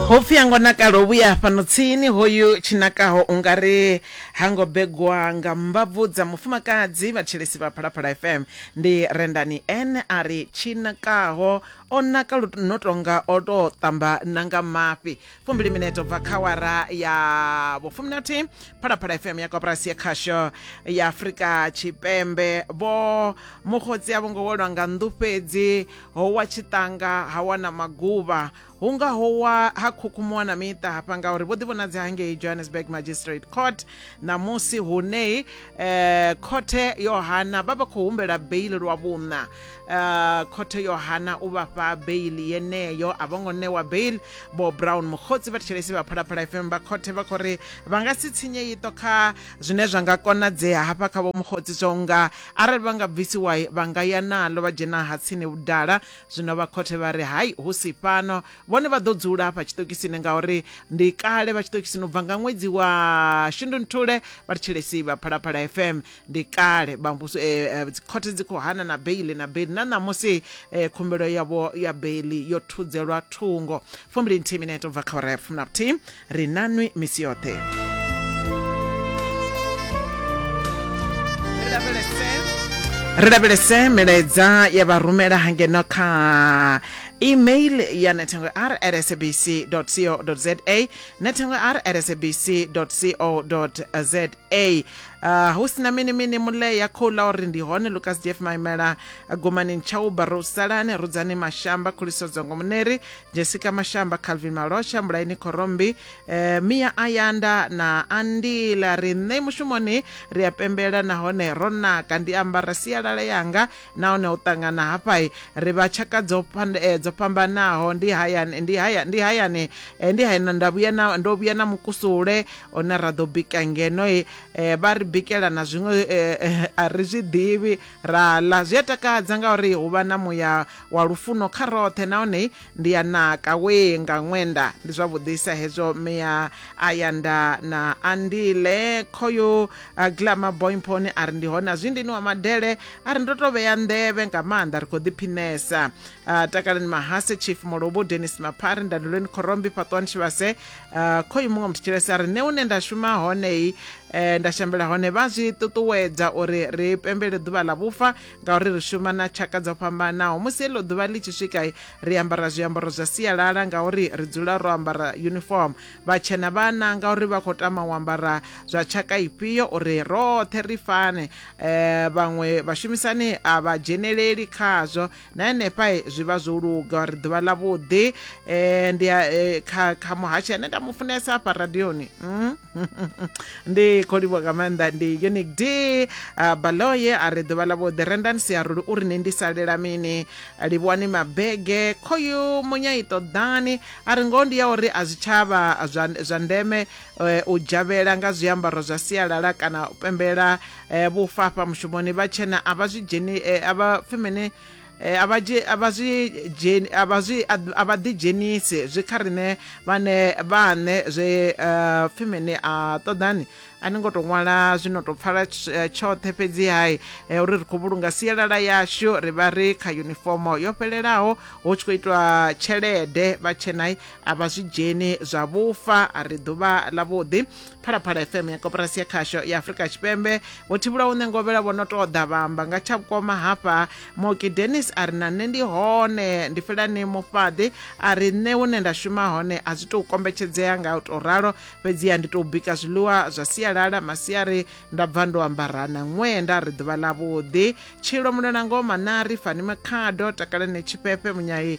ho pfi a ngo nakala o vhuya fhano tsini hoyu tshinakaho ungari ha ngo begwa nga mbabvu dza mufumakadzi vhatshelesi vha phalaphala fm ndi rendani n a ri tshinakaho o naka lu- no tonga o tou ṱamba na nga mafhi fumbili mineto bva kha wara ya vhufumi na thihi phalaphala fm ya koporasi ya khasho ya afurika tshipembe vho mukhotsi a vho ngo welwa nga nḓu fhedzi ho wa tshiṱanga ha wana maguvha hu nga ho wa ha khukhumuwa na miṱa hafha ngauri vho ḓivhonadzi hangei johannesburg magistrate court ṋamusi hune eh, khothe yo hana vha vha khou humbela beili lwa vhuṋa eh, khothe yo hana u vhafha beili yeneyo a vho ngo ṋewa beili bo brown mukhotsi vha thetshelesi vha phalaphala fm vha khothe vha khou ri vha nga si tsinye iṱo kha zwine zwa nga konadzea hafha kha vho mukhotsi zwo nga Arali vha nga bvisiwa, vha nga ya naḽo vha dzhena ha tsini vhudala. Zwino vha khothe vha ri, Hai, hu si fhano! Vhone vha ḓo dzula hafha tshiṱokisini, ngauri ndi kale vha tshiṱokisini u bva nga ṅwedzi wa Shundunthule vha ri Tshelesi vha Phalaphala FM. Ndi kale vha muvhuso, e, e, dzikhothe dzi khou hana na beiḽi na beiḽi, na ṋamusi e, khumbelo yavho ya beiḽi yo thudzelwa thungo. Fumbili-nthihi minete u bva kha awara ya fumi na vhuthihi. ri nanwi misi yoṱhe ri lavhelese milaedza ya vha rumela hangeno kha email ya nethengo r at sabc co za nethengo r at sabc co za a uh, hu sina mini mini mule ya khou ḽa uri ndi hone lucas df maimela gomani ntshauba ro salane rudzani mashamba khuliso dzongo muneri jessica mashamba calvin malosha mulaini khorombi eh, mia ayanda na andila ri nṋe mushumoni ri a pembela nahone ro naka ndi ambara sialala yanga nahone u ṱangana hafhai ri vha tshaka dzo eh, dzo fhambanaho ndi hayani ndi haya ndi hayani eh, ndi hayani nda vhuya na ndo vhuya na mukusule hone ra ḓo bika ngeno um vha ri bikela na zwiṅwe um a ri zwi ḓivhi ra ḽa zwi a takadza ngauri hu vha na muya wa lufuno kha roṱhe nahone ndi ya naka we nga ṅwenda ndi zwavhuḓisa hezwo mea a ya nda na andile khoyo glama boymponi a ri ndi hone a zwi ndini wa madele a ri ndo to vhea nḓevhe nga maanḓa ri khou ḓiphinesa takalani mahase chief molobo denis maphari ndandelweni khorombi fhaṱwani tshivhase uh, kho iwe muṅwe muthetshelesi a ri ne une nda shuma honei eh, nda shambela hone vha zwi ṱuṱuwedza uri ri pembele ḓuvha ḽa vhufa ngauri ri shuma na tshaka dzo fhambanaho musi heḽo ḓuvha ḽi tshi swika ri ambara zwiambaro zwa sialala ngauri ri dzula ro ambara uniform vhatshena vha nanga uri vha khou tama u ambara zwa tshaka ifhio uri roṱhe ri fane um vhaṅwe vhashumisani a vha dzheneleli khazwo na henefha zwi vha zwo luga ri ḓuvha ḽa vhuḓi um ndi eh, kha kha muhashi ane nda mu funesa afha radioni mm? ndi khou livho nga maanḓa ndi unic d ah, baloye a ri ḓuvha ḽa vhuḓi rendani siaruli uri ni ndi salela mini livhuwani mabege khoyu munya i ṱoḓani a ri ngoho ndi ya uri a zwitshavha zwa ndeme eh, u dzhavhela nga zwiambaro zwa sialala kana u pembela eh, vhufa afha mushumoni vha tshena a vha zwi dzheni eh, a vha pfi mini eh, a vha dzhe- a vha zwi dzheni a vha zwi a a vha ḓidzhenisi zwi kha riṋe vhane vhaṋe zwe eh, pfi mini a ṱoḓani a ni ngo tou ṅwala zwi no tou pfala tsh- eh, tshoṱhe fhedzi hai eh, uri ri khou vhulunga sialala yashu ri vha ri kha yunifomo yo fhelelaho hu tshi khou itwa tshelede vha tshenai a vha zwi dzheni zwa vhufa a ri ḓuvha ḽavhuḓi phalaphala fm ya koporasi ya khasho ya afurika tshipembe vho thivhulaho nṋe ngovhela vho no tou ḓa vhamba nga tsha vhukoma hafha moki denis a ri na nṋe ndi hone ndi felani mufhaḓi a ri nṋe hune nda shuma hone a zwi tou kombetshedzea nga u tou ralo fhedziha ndi tou bika zwiḽiwa zwa sialala masiari nda bva ndo ambarana ṅwee nda ri ḓuvha ḽavhuḓi tshilo mulelangoma na ri fani makhado takalani tshifhefe munyai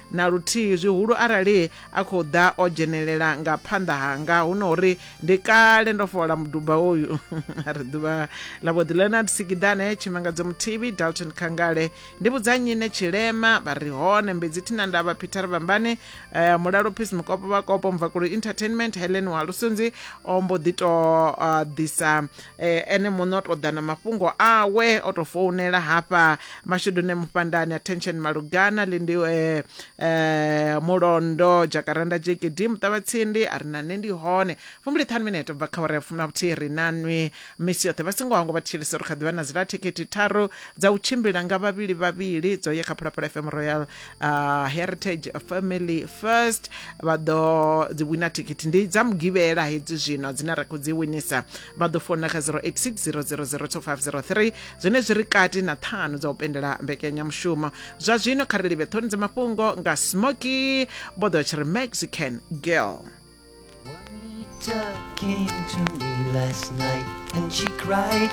Na luthihi, zwihulu arali a khou ḓa o dzhenelela nga phanḓa hanga hu no uri ndi kale ndo fhola muduba uyu. A ri ḓuvha ḽa vho ḓi Leonard Sikidane, Tshimangadzo Muthibi, Dalton Khangale, Ndivhudza Nyine Tshilema, vha ri hone Mbedzi Thinandavha, Peter Vhambane, Mulalo Peace Mukopo Vhakopo, Mvakulu Entertainment, Helen Walusunzi o mbo ḓi tou ḓisa Eh, ene muṋe o tou ḓa na mafhungo awe o tou founela hafha mashudune mufhandani attention malugana lindi eh, eh, mulondo jakaranda jkd muṱavhatsindi a ri na nṋe ndi hone fumbili ṱhanu minete bva kha uri ya fumi na vhuthihi ri na nwi misi yoṱhe vha songo hangwa vha thetshelesa uri kha ḓivha na zila thikhithi tharu dza u tshimbila nga vhavhili vhavhili dzo ye kha phalaphala fm royal uh, heritage family first vha ḓo dzi wina thikhithi ndi dza mugivhela hedzi zwino dzine ra khou dzi winisa vha ḓo fona kha 0860002503 zwine zwi ri kati na ṱhanu dza u pendela mbekanyamushumo zwa zwino kha ri livhe ṱhoni dza mafhungo nga smoky vho ḓo tshi ri mexican girl Talking to me last night and she cried